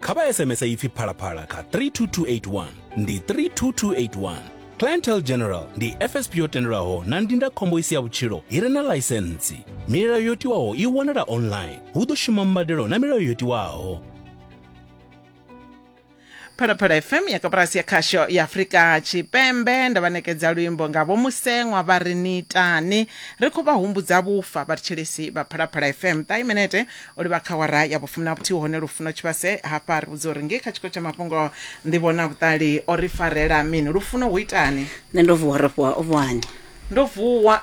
kha vha sms ipfi phalaphala kha 32281 ndi 32281 clientele general ndi fsp yo tendelwaho na ndindakhombo i si ya vhutshilo i re na ḽaisentsi milayo yo tiwaho i wanala online hu ḓo shuma mbadelo na milayo yo tiwaho phalaphala fm ya koporasi ya khasho ya afurika tshipembe nda vha nekedza luimbo nga vho museṅwa vha ri ni itani ri khou vha humbudza vhufa vhathetshelesi vha phalaphala fm ṱahi minete O livha kha awara ya vhufumi na vhuthihi hone lufuno tshivhase. Hafha ri vhudzwa uri ngei kha tshiko tsha mafhungo Nḓivho na Vhuṱali o ri farela mini? Lufuno hu itani? Nṋe ndo vuwa ro fhiwa ovhwani. Ndo vuwa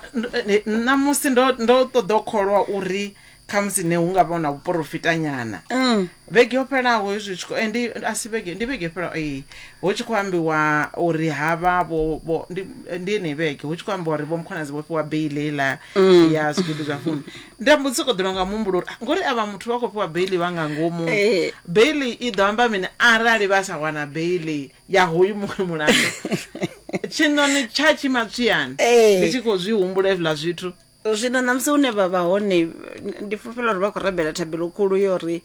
ṋamusi ndo ndo ṱoḓa u kholwa uri khamusi ne hu nga vha hu na vhuporofitanyana. Vhege yo fhelaho hezwi tshi khou ndi a si vhege ndi vhege yo fhelaho ee hu tshi khou ambiwa uri ha vha vho vho ndi ndi yeneyi vhege hu tshi khou ambiwa uri vho Mkhwanazi vho fhiwa beili heiḽa ya zwigidi zwa fumi. nda mbo sokou ḓivha nga muhumbulo uri ah, ngori avha muthu vha khou fhiwa beili vha nga ngomu Ee. beili i ḓo amba mini arali vha sa wana beili ya hoyu muṅwe mulandu tshiṋoni tsha tshimatswiyani Ee. ndi tshi khou zwi humbula hezwiḽa zwithu zwino ṋamusi hune vha vha hone ndi fulufhela uri vha khou rabela thabelo khulu yo ri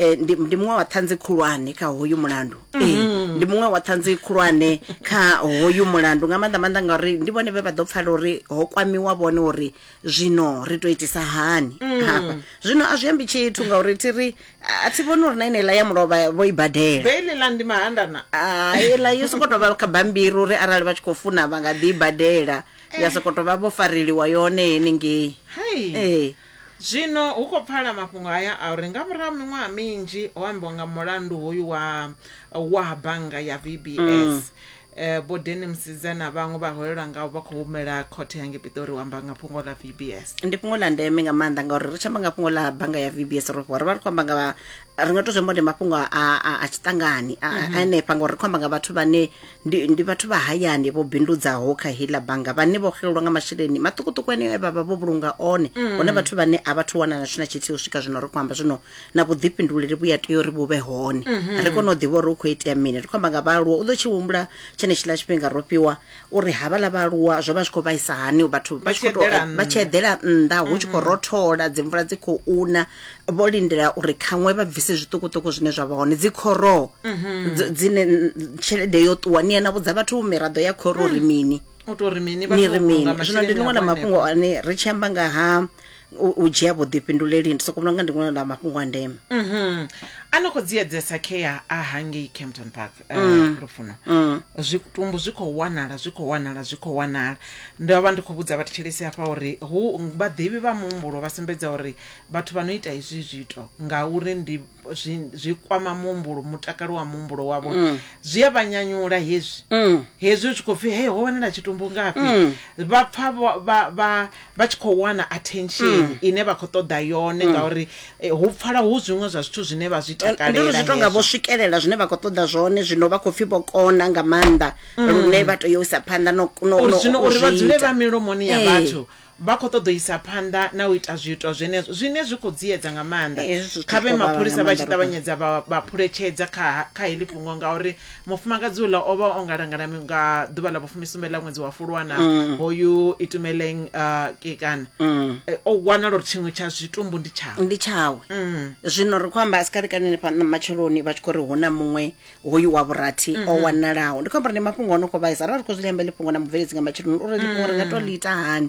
Eh, ndi, ndi muṅwe wa ṱhanzi khulwane kha hoyu mulandu eh, ndi muṅwe wa ṱhanzi khulwane kha hoyu mulandu nga maanḓa maanḓa ngauri ndi vhone vhe vha ḓo pfala uri ho kwamiwa vhone uri zwino ri to itisa hani hafha zwino a zwi ambi tshithu ngauri thi ri a a thi vhoni uri na ineiḽa ya mulovha vho i badela beile ḽa ndi mahandana iḽa yo sokou tou vha kha bambiri uri arali vha tshi khou funa vha nga ḓi i badela ya sokou tou vha vho fareliwa yone henengei hai Eh. Zwino hu khou pfala mafhungo haya a uri nga murahu ha miṅwaha minzhi ho ambiwa nga mulandu hoyu wa wa bannga ya VBS. Eh, Vho Denny Msidze na vhaṅwe vhaholelwa ngavho vha khou humela khothe ya ngei Pitori u amba nga fhungo ḽa VBS. ndi fhungo ḽa ndeme nga maanḓa ngauri ri tshi amba nga fhungo ḽa bannga ya vbs ro fhiwa ri vha ri khou amba nga vha- ri nga to zwi amba uri ndi mafhungo a, a, a tshiṱangani a- a- a enefha ngauri ri khou amba nga vhathu vhane ndi, ndi vhathu vha hayani vho bindudzaho kha heiḽa bannga vhane vho xelelwa nga masheleni maṱukuṱuku eneo e vha vha vho vhulunga one hone vhathu vhane a vhathu wana na tshina tshithihi u swika zwino ri khou amba zwino na vhuḓifhinduleli vhu ya tea uri vhu vhe hone ri kone u ḓivha uri hu khou itea mini ri khou amba nga vhaaluwa u ḓo tshi humbula tshenetshiḽa tshifhinga ro fhiwa uri havhaḽa vhaaluwa zwo vha zwi khou vhaisa hani vhathu vha tshi khou tou- vha tshi eḓela nnḓa hu tshi khou rothola dzimvula dzi khou una vho lindela uri khaṅwe vha bvise zwiṱukuṱuku zwine zwa vha hone dzi khoroo dzi- dzine n- tshelede yo ṱuwa ni yena vhudza vhathu miraḓo ya khoro uri mini u tou ri mini ni ri mini zwino ndi ḽiṅwe ḽa mafhungo ane ri tshi amba nga ha u u dzhia vhuḓifhinduleli ndi soko vhona nga ndi ṅwe ḽa mafhungo a ndeme Mhm. a no khou dzi edzesa khea a hangei campton park eh, Mm. lufuno Mm. zwitumbu zwi khou wanala zwi khou wanala zwi khou wanala ndo vha ndi khou vhudza vhathetshelesi hafha uri hu vhaḓivhi vha muhumbulo vha sumbedza uri Vhathu vha no ita hezwi zwiito ngauri ndi zwi, zwi kwama muhumbulo mutakalo wa muhumbulo wavho mm. zwi a vha nyanyula hezwi mm. hezwi u tshi khou pfi hei ho wanala tshitumbu ngafhi mm. vha pfa vha tshi khou wana attention mm. ine vha khou ṱoḓa yone mm. ngauri eh, hu pfala hu zwiṅwe zwa zwithu zwine vha zwi takalela zwi tonga vho swikelela zwine vha khou ṱoḓa zwone zwino vha khou pfi vho kona nga maanḓa mm. lune vha tea u isa phanḓa no, no, no, uri vha dzule vha milomoni ya eh. vhathu Vha khou ṱoḓa u isa phanḓa na u ita zwiito zwenezwo zwine zwi khou dziedza nga maanḓa. Kha vhe mapholisa vha tshi ṱavhanyedza vha vha phuletshedza kha kha heḽi fhungo ngauri mufumakadzi uḽa o vha o ngalangala nga ḓuvha ḽa vhufumisumbe ḽa ṅwedzi wa Fulwa na hoyu Itumeleng Kekana. O wanala uri tshiṅwe tsha zwitumbu ndi tshawe. Ndi tshawe. Zwino ri khou amba a si kale kale henefha matsheloni vha tshi khou ri hu na muṅwe hoyu wa vhurathi mm -hmm. o wanalaho ndi khou amba uri ndi mafhungo ono khou vhaisa arali ri khou zwi amba ḽifhungo na mubveledzi nga matsheloni uri ḽifhungo ri nga to ḽi ita hani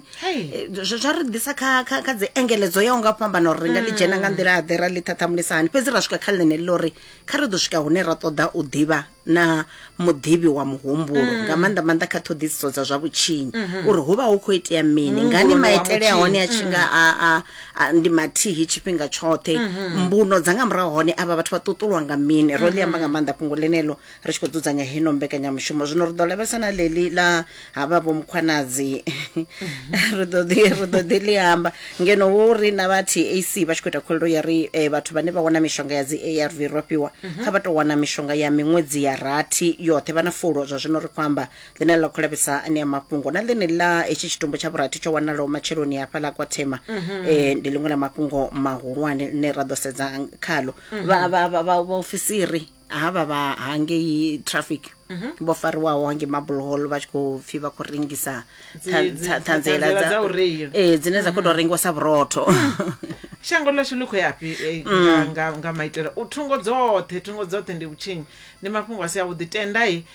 zwa ri ḓisa kha kha kha dzi engeledzo ya unga fhambana uri ri nga ḽi dzhena nga nḓila ḓe ra ḽi thathamulisa hani fhedzi ra swika kha ḽine ḽo ri kha ri ḓo swika hune ra ṱoḓa u ḓivha na muḓivhi wa muhumbulo mm. nga maanḓa maanḓa kha ṱhoḓisiso dza zwa vhutshinyi mm-hmm. uri hu vha hu khou itea mini ngani maitele a hone a tshi nga mm. a a, ndi mathihi tshifhinga tshoṱhe mbuno dza nga murahu hone avha vhathu vha ṱuṱulwa nga mini ro ḽi amba nga maanḓa fhungo ḽeneḽo ri tshi khou dzudzanya heno mbekanyamushumo zwino ri ḓo lavhelesa na ḽeḽi ḽa havha vho mukhwanadzi ri ḓo ḓi ri ḓo ḓi ḽi amba ngeno wo ri na vha tac vha tshi khou ita khuwelelo ya ri eh, vhathu vhane vha wana mishonga ya dzi arv ro fhiwa kha vha tou wana mishonga ya miṅwedzi ya rathi yoṱhe vha na fulo zwa zwino ri khou amba ḽine ḽa khou lavhesa anea mafhungo na ḽine ḽa hetshi tshitumbu tsha vhurathi tsho wanalaho matsheloni hafhaḽa kwa thema eh, ndi ḽiṅwe ḽa mafhungo mahulwane ḽine ra ḓo sedza khalo Vha- vha- vha- vha- vhaofisiri havha vha hangei traffic vho fariwaho hangei marble hall vha tshi khou pfi vha khou rengisa Dzi- ṱha- dzi- ṱha- ṱhanziela ṱhanziela dza u reila. ee dzine dza khou tou rengiwa sa vhurotho shango ḽashu ḽi khou yafhi eh, nga- nga- nga maitele u thungo dzoṱhe thungo dzoṱhe ndi vhutshinyi ndi mafhungo a si avhuḓi tendai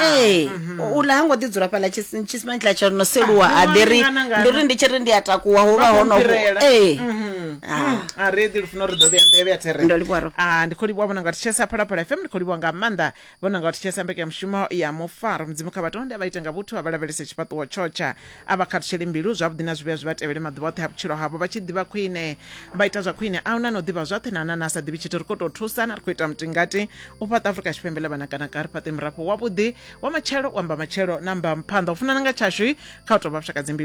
ee uḽa ha ngo ḓi dzula fhaḽa tshis- tshisimani tshiḽa tsha no seluwa Ah, a ḓi ri ngana, ngana. ndi ri ndi tshi ri ndi a takuwa ho vha ho no Fhirela. ee Mhm. Ah. a re ḓi lufuna uri ḓo vhuya nḓevhe ya there Ndo livhuwa Rob. Ah, ndi khou livhuwa vhona nga thetshelesa phalaphala fm ndi khou livhuwa nga maanḓa vhona nga thetshelesa mbekanyamushumo ya mufaro mudzimu kha vhatonde a vha ite nga vhuthu a vha lavhelese tshifhaṱuwo tshotsha A vha khathutsheli mbilu zwavhuḓi na zwivhuya zwi vha tevhele maḓuvha oṱhe a vhutshilo havho, vha tshi ḓivha khwine, vha ita zwa khwine. A hu na ane o ḓivha zwoṱhe na a na ane a sa ḓivhi tshithu. Ri khou tou thusana, ri khou ita mutingati u fhaṱa Afrika Tshipembe ḽa vhanakanaka, ri fhaṱe murafho wavhuḓi wa matshelo, wa mbamatshelo na mbamuphanḓa. U funana nga tshashu kha u tou vha vhashakadzimbilu.